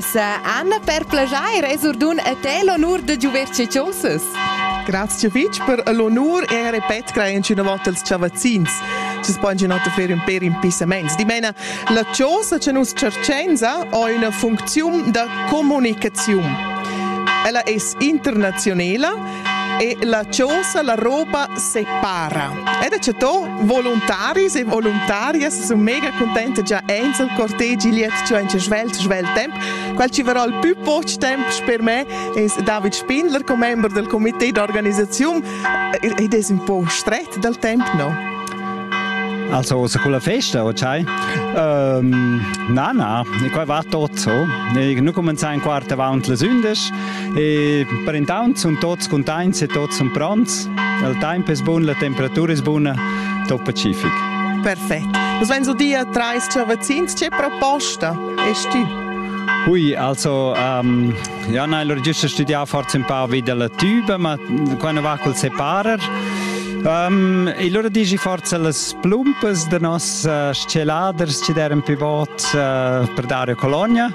Sa Anna per plagiair es ordun a te l'onur da giuver che chosas. Grazie fitg per l'onur e repet crainci una volta als chavazzins. Ci spon una volta fare un per in pisaments. Di mena, la chosa che nus cercenza ha una funzione da comunicazione. Ella è internazionale e la chosa la roba separa. Ed a chato voluntaris e voluntarias sun mega cuntenta già aint il cortegi liet giò in svelt svelt temp. Quel ci varà il pü poch temp sper me es David Spindler, commember del comité d'organisaziun ed es ün po stret dal temp, no? Also, se con la festa, ok? Um, na, na, e qua va tot so. E noi cominciamo in quarto avanti le sündes. E per intant sun tuots cuntaints e tuots sun pronts. Il temp es bun, la temperatura es buna, tot pacific. Perfett. Was wenn du dir dreist Cervecins, c'è proposta? Est tu? Ui, also, um, ja, nein, l'ho giusto studià forse un po' wie della tuba, ma quando va col separer. Um, e allora dici forse las plumpas de nos uh, sceladers ci deran più vot uh, per dare colonia.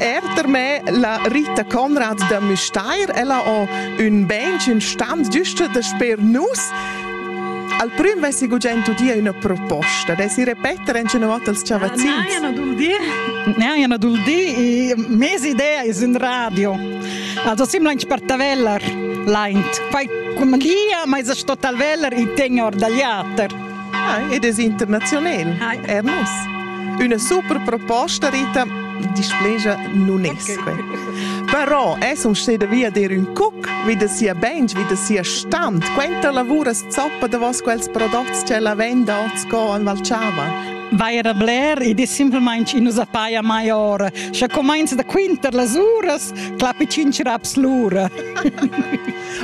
Er per me la Rita Conrad da Müstair, ella ho ün bench, ün stand giusto da sper nus. Al prüm vessi gugent udia üna proposta, dessi repeter en una volta als ciavazzins. Ah, nein, ana dul dir. Nein, ana dul dir, mes idea es un radio. Also simlainch per taveller, laint. Poi cum chia, ma es sto talveller i tegn or dal jater. Ah, ed es internaziunel. Hi. Er nus. Üna super proposta, Rita, displegia nun es que. Però es un steda via dir ün cuc, wie das sia Bench, wie das sia Stand. Quenta lavuras zoppa da vos quels prodotti che la venda ot sco al Valchava. vai a bler ed è semplamain in usa paia mai ora. Sche comincia da quinter las uras, clappi cinc raps l'ura.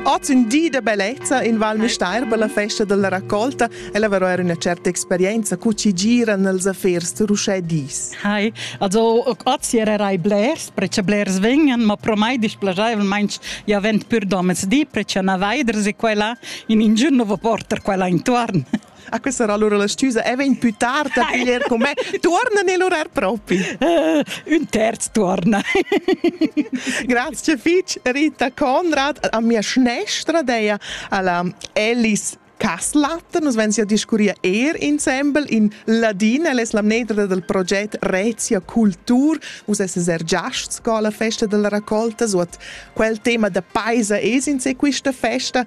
Oz ün di da bellezza in Val Müstair per la festa della raccolta e la era üna certa experienza co chi gira nels affers d'uschè dis. Hi, also oz erai blers, precia blers vegnan, ma pro mai displasaivelmaing ja vent pür domens di, precia na vaiders e quella in ingiun nouva porter quella intuorn. A questa era allora la stüsa e vegn più tard a piglier con me. Tuorna nel orar propi. Uh, un terz tuorna. Grazie fitch Rita Conrad a mia schnestra deia alla Alice Kasslatten, nos vensia discuria er insembel in ladin, el es la mnedra del proget Rezia Cultur, us es er giasts co la festa della raccolta, so at quel tema da paisa es in se quista festa,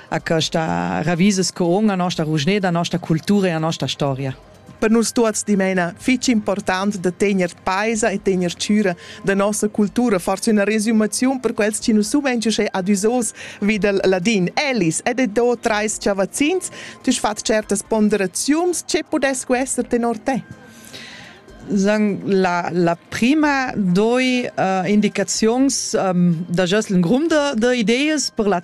a questa ravises co a nostra rugneda, a nostra cultura e a nostra storia. Per nus tuots dimena fich important da tegner paisa e tegner chüra da nossa cultura, forse una resumazione per quels che non sumenti che adisos videl ladin. Elis, ed e do trais chavazzins, tu fat certas ponderazions, ce podesco esser tenor te? Sagen, la, la prima doi uh, indicazions um, da jos l'en grund de idees per la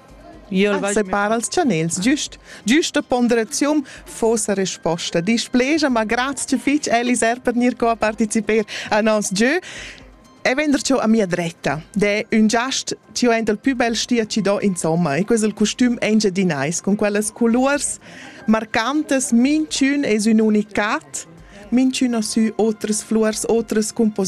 Separar els chanels giust. Giusta ponderaziun fossa resposta. Displegia, ma grazie fitg Elis er per gnir co a participer a nos gieu. E vender ciò a mia dretta. De un giast ci ho enta il più bel stia ci do insomma e questo il costum engiadinais con quellas colors marcantes mincun es un unicat mincun ha sü otras flurs, otras composizioni